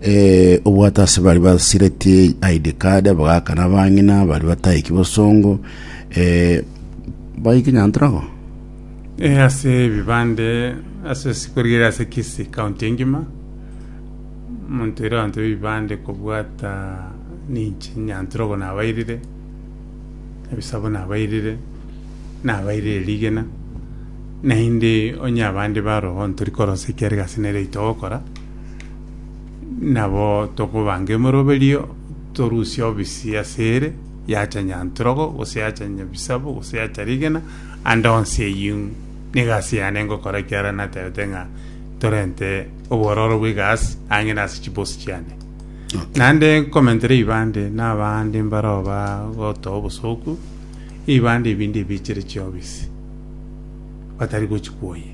Ee, obwate ase bari basiretie ID card, abagaka na abang'ina, bari bataiki bosongo, ee, baike Nyantorago. Eh, ase ebibande ase sikorigereria ase kisi county engima omonto ere abanto b'ebibande kobwata ninche nyanturogo nabairire ebisabo nabairire nabairire rigena naende onye abande barogo ntori korosia ekiagera egasi nere tookora Nabo tokobanga emoroberio, torusie obisi ase ere, yacha nyantrogo, gose yacha nyabisabu, gose yacha rigena, ande onsi eyio nigo ase yane ngokora ekiagera naterete ng'a torente obororo bwa egasi ang'e nase chibosi chiane. Naende nkomentera ebibande na abande mbarao bagotoa obosoku, ebibande ebinde ebichire chiobisi batari gochikwoyia.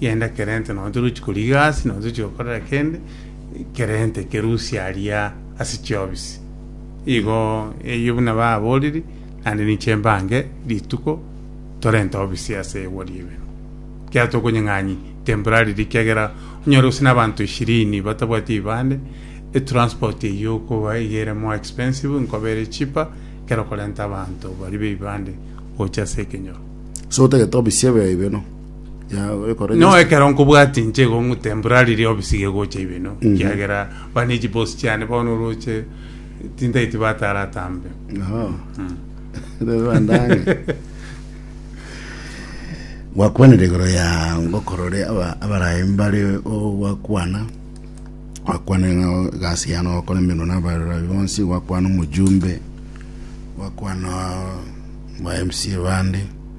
Genda Kerente, nonya tori gochia korigia egasi, nonya tochia gokorera kende, Kerente kerusia aria ase chiobisi. Igo eyio buna baboriri, naende ninche mbange rituko torente obisi ase egwa ri'ebero. Ekiagera tokonyeng'anyi temporary riria ekiagera onyore gose nabanto ishirini batabwati ebibande, etransport eyio okoba iga ere more expensive nkoba ere cheaper ekero okorenta abanto baria b'ebibande gocha ase ekenyoro. Ase gotagete obisi ebero. Ya, ore kore Noo just- ekero nkobwati inche igo ng'utemporari ria obisi gegocha ibino kiagera bane echibosi chiane bono oroche tintaiti batara atambe Aha. Rero bandange. gwakwanire igoro ya ngokorore aba- abarayi mbare ogwakwana gwakwanire ng'a egasi yane ogokora emeremo na abarayi bonsi gwakwana omojumbe gwakwana ba mca bande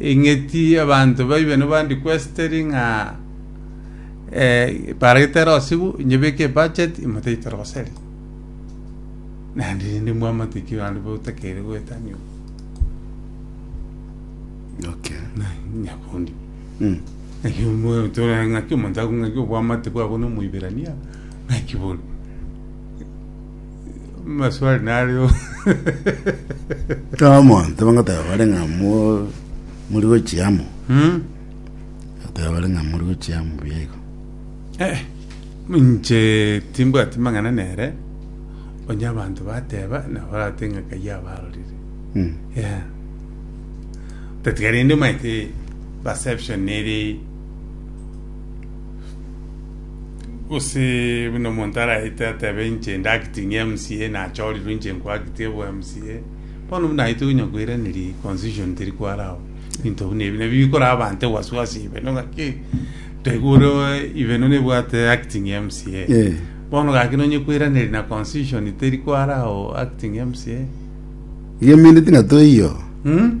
Ing'iti abanto baibe nobandi kwesiteri ng'a eh, baragete erosigu, inyebeke ebudget, imotaite roseri. Naende rende mwamate ki abanto botakeire goetania obo. Okay. Na nyakundi. Mm. Naki omo- tore ng'aki omonto agong'aki obwamate bwabo na omoiberania, ng'aki bono. Maswali nario. Omonto bagoteba bare ng'a mo- muri gochia amo Hmm? goteba bare ng'a muri gochia amo buya igo Eh, inche timbwati mang'ana nere onye abanto bateba nabo barate ng'a kayia abarorire Mm. Yeah. Tatiga rende omanyete perception eri Gose buna omonto araete atebe inche ndi acting MCA nachorirwe inche nko acting obo MCA. Bono buna aite onya koiraneria constitution teri kwara abo. Binto buna ebi nabio bikora abante wasiwasi ibe no ngaki toigure ibe no nebwate acting MCA. Eh. Bono gaki nonye koiraneria na constitution teri kwara abo acting MCA. Igeminiti ng'a toiyo. Hmm?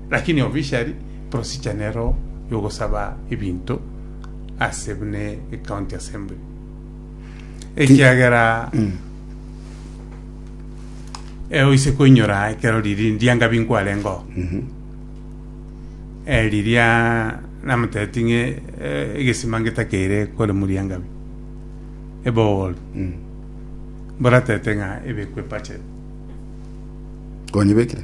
Lakini officially procedure nero yogosaba ebinto ase buna ecounty assembly ekiagera eh, oise koinyora ekero riri ndianga binkwarengo eh, riria namotebeti ng'e eh, egesima ngetakeire kore moriangabi ebowol mboratete ng'a ebekwe budget konyebekire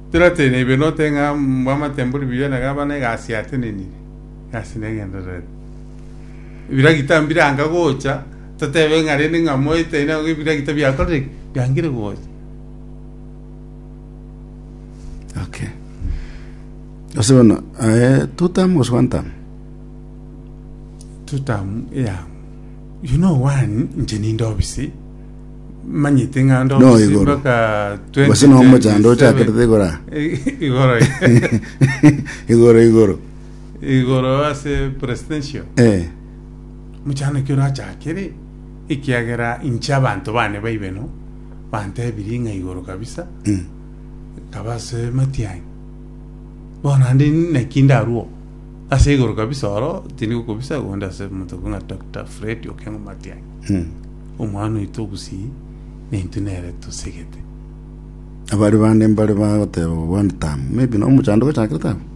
Torwate neibe note ng'a bw'amatembori bw'Yuda na gavana egasi yatenenire, egasi negendererete. Ebiragita mbiranga gocha, totebe ng'a rende ng'a moite aino agwo ebiragita biakorire ki? Biangire gocha. Okay. Ase bono, eh, two term gose one term? Tutamu eyamo. You know one, inche ninde obisi. manyete ng'a ndo No, omosimba igoro. ka Gose na omochando 2027. ochakerete igoro aa. I- igoro igoro igoro igoro ase presidential eh mochano ki orachakere ekiagera inche abanto bane baibe no bantebirie ng'a igoro kabisa mm. nkaba ase matiang'i bono ande naki ndarwo ase igoro kabisa oro tindi gokobisa onde ase omonto ekong'a Doctor Fred Okengo Matiang'i mm. Omwana oito obusii, naintwe nere tosegete. Abare bande mbare bagoteba, Obwani tamo, maybe na omochando gochakire tamo.